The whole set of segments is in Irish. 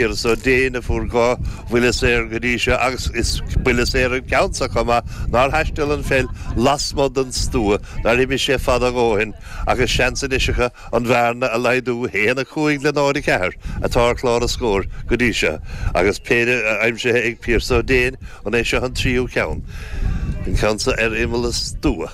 Pearse Ó Déin a fuair dhá bhuille saor go dtí seo agus is buille saor an ceann seo chomh maith. Nár thaisteal an pheil lasmuigh den stua, nár imigh sé fada a dhóthain agus seans anois acu an bhearna a laghdú. 1, 5 le 0, 4 atá ar chlár an scóir go dtí seo agus péire aimsithe ag Pearse Ó Déin. An é seo an tríú ceann? An ceann seo ar imeall an stua.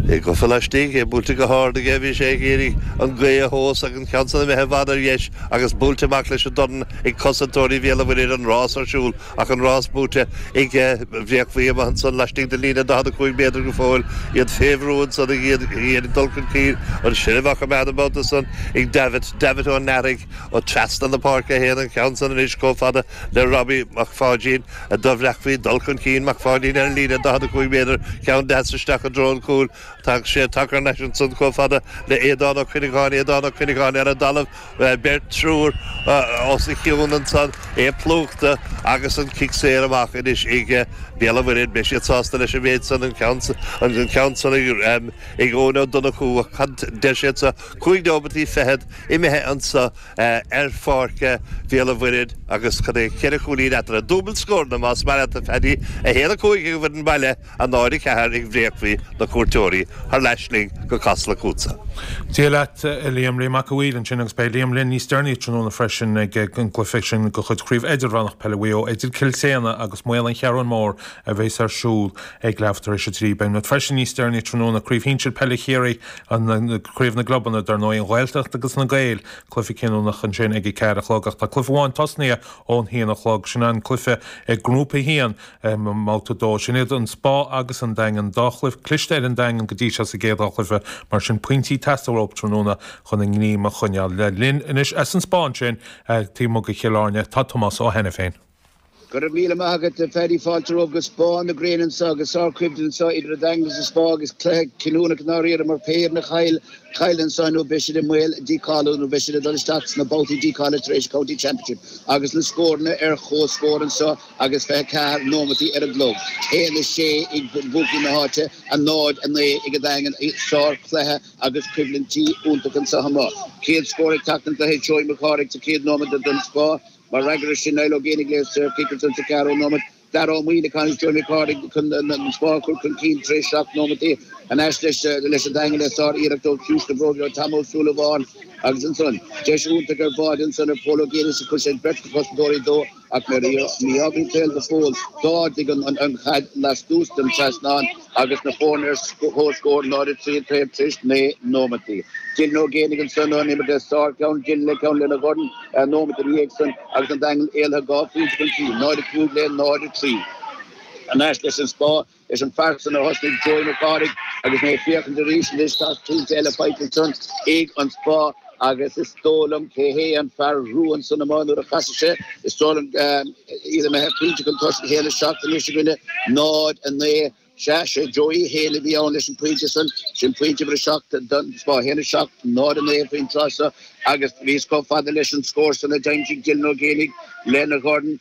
É gafa laistigh, é buailte go hard aige, bhí sé ag iarraidh an gaoth a thomhas agus. Ceann san imithe i bhfad ar dheis agus buailte amach leis an dorn ag cosantóirí Bhéal an Mhuirthead, an rás ar siúl ach an rás buaite ag Bréachmhaigh ansan laistigh den líne 45 méadar go fóill, iad fé bhrú ansan ag iarraidh dul chun cinn, an seilbh á choimeád an babhta san ag Davitt, Davitt Ó Náraigh, ó trasna na páirce a théann an ceann san anois chomh fada le Robbie Mac Pháidín, do Bhréachmhaigh dul chun cinn Mac Pháidín ar an líne 45 méadar, ceann deas isteach i dtreo an chúil. Tá sé tacar leis ansan chomh fada le Aodán Ó Cuinneagáin, Aodán Ó Cuinneagáin ar an dtalamh, beirt, triúr os a chionn ansan, é plúchta agus an cic saor amach anois ag Béal an Mhuirthead. Beidh siad sásta leis an mhéid san, an ceann san ag Eoin Ó Donnchú, cad deir siad anso cúig nóimeataí fichead imithe anso ar pháirc Bhéal an Mhuirthead agus cad é ceithre chúilín eatarthu. Dúbailt scóranna más maith leat a Phaddy, 1-5 ag an bhfoireann baile. A náid a ceathair ag Bréachmhaigh na cuairteoirí thar n-ais linn go Casla chugatsa. Dia leat a Liam, Liam Mac a Mhaoir ansin agus beidh Liam linn níos deireanaí tráthnóna freisin ag an gcluiche sin de chuid Chraobh Idirmheánach Peile Mhaigh Eo idir Cill tSéadhna agus Maolla An Cheathrú Mhór a bheas ar siúl ag leathuair tar éis a dtrí. Beidh muid freisin níos deireanaí tráthnóna Craobh Shinsir Peile Chiarraí, Craobh na gClubanna, dar ndóigh an Ghaeltacht agus na Gaeil, cluiche cinniúnach ansin ag a ceathair a chlog ach tá cluiche amháin tosnaithe ón haon a chlog, sin an cluiche ag Grúpa a haon Babhta a 2, Sin iad an Spá agus an Daingean. Dhá chluiche cliste ar an Daingean go dtí seo sa gcéad dá chluiche, mar sin, pointí ag teastáil uathub tráthnóna chun a ngníom a choinneáil. Linn anois as an Spá ansin, taobh amuigh de Chill Airne, tá Tomás Ó hAiniféin. Go raibh míle maith agat, a Phaddy. Fáilte romhaibh go Spá na Gréine anseo, agus sárchoimhlint anseo idir an Daingean agus an Spá, agus cluiche cinniúnach i ndáiríre, mar pé foireann a chailleann anso, nó beidh siad i mbaol dícháiliú, nó beidh siad ag dul isteach sna babhtaí dícháilithe tar éis an County Championship, agus na scóranna ar chomhscór anseo. agus 24 nóimeataí ar an gclog, 1, 6 ag lucht na háite, a náid, a naoi ag an Daingean, i sár chluiche agus coimhlintí iontacha anseo amuigh. Céad scór ag teacht don gcluiche, Joey Mac Cárthaigh sa chéad nóiméad don Spá. Mar fhreagra ar sin, Niall Ó Géibheannaigh le saorchic ansan sa cheathrú nóiméad. Dara Ó Muíneacháin agus Joey Mac Cárthaigh chun an Spá a chur chun cinn tar éis seacht nóimeataí. Ar ais leis an Daingean le sár iarracht ó chiumhais na bróige Tom Ó Súilleabháin agus ansan deis iontach ar bháide ansan ar Phól Ó Géibheannaigh is chuir sé beirt chosantóirí de Ach nuair a shuíodh an saol go fóill, d'ardaigh an chaid lastuas den trasnán agus na foirne ar comhscór, 0-3 an taobh tar éis naoi nóimeataí. Dylan Ó Géanaigh ansan ón imirt le sárcheann, Dylan le ceann lena dhorn nóimeat ina dhiaidh san agus an Daingean éalaithe dhá phointe chun cinn, 0-5 le 0-3. Thar n-ais leis an Spá. Leis an bhfear san a thosnaigh Joey Mac Cárthaigh agus mé ag féachaint arís anois tá pointe eile faighte ansan ag an Spá agus is dó' liom cé hé an fear rua ansan amuigh nuair a chasfaidh sé, is dó' liom, iad a bheith ar phointe chun tosaigh a haon a seacht anois i gcoinne 0, 9. Sea, 'sé Joey Hale a bhí ann leis an phointe san. Sin pointe uimhir a seacht don Spá. A haon, a seacht, 0, a naoi faoin tráth so agus bhíos chomh fada leis an scór san a d'aimsigh Dylan Ó Géanaigh lena dhorn.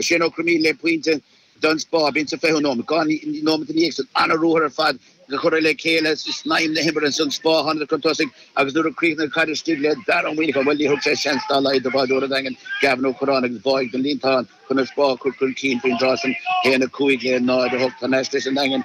Shane Ó Cróinín le pointe don Spá, b'in sa fichiú nóiméad. Dhá nóiméad i ndiaidh san, an-ruathar ar fad a cuireadh le chéile i snaidhm na himeartha ansan Spá, tháingadar chun tosaigh agus nuair a chríochnaigh caid istigh le Dara Ó Muimhneacháin, bhuel, ní thug sé seans dá laghad do bháireoir an Daingin, Gavin Ó Curráin agus bháigh den líontán chun an Spá a chur chun cinn faoin dtráth san. 1:05 le 0:08 thar n-ais leis an Daingean.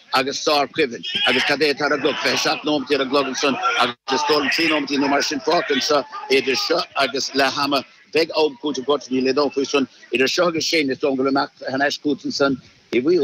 agus sárchoimhlint, agus cad é atá ar an gclog? Fiche seacht nóiméad ar an gclog ansan, agus is dóigh liom trí nóiméad nó mar sin fágtha anseo idir seo agus leath ama. Beidh am cúitimh gortaithe, níl aon dabht faoi san. Idir seo agus sin, is dóigh go bhfuil imeacht thar n-ais chút ansan.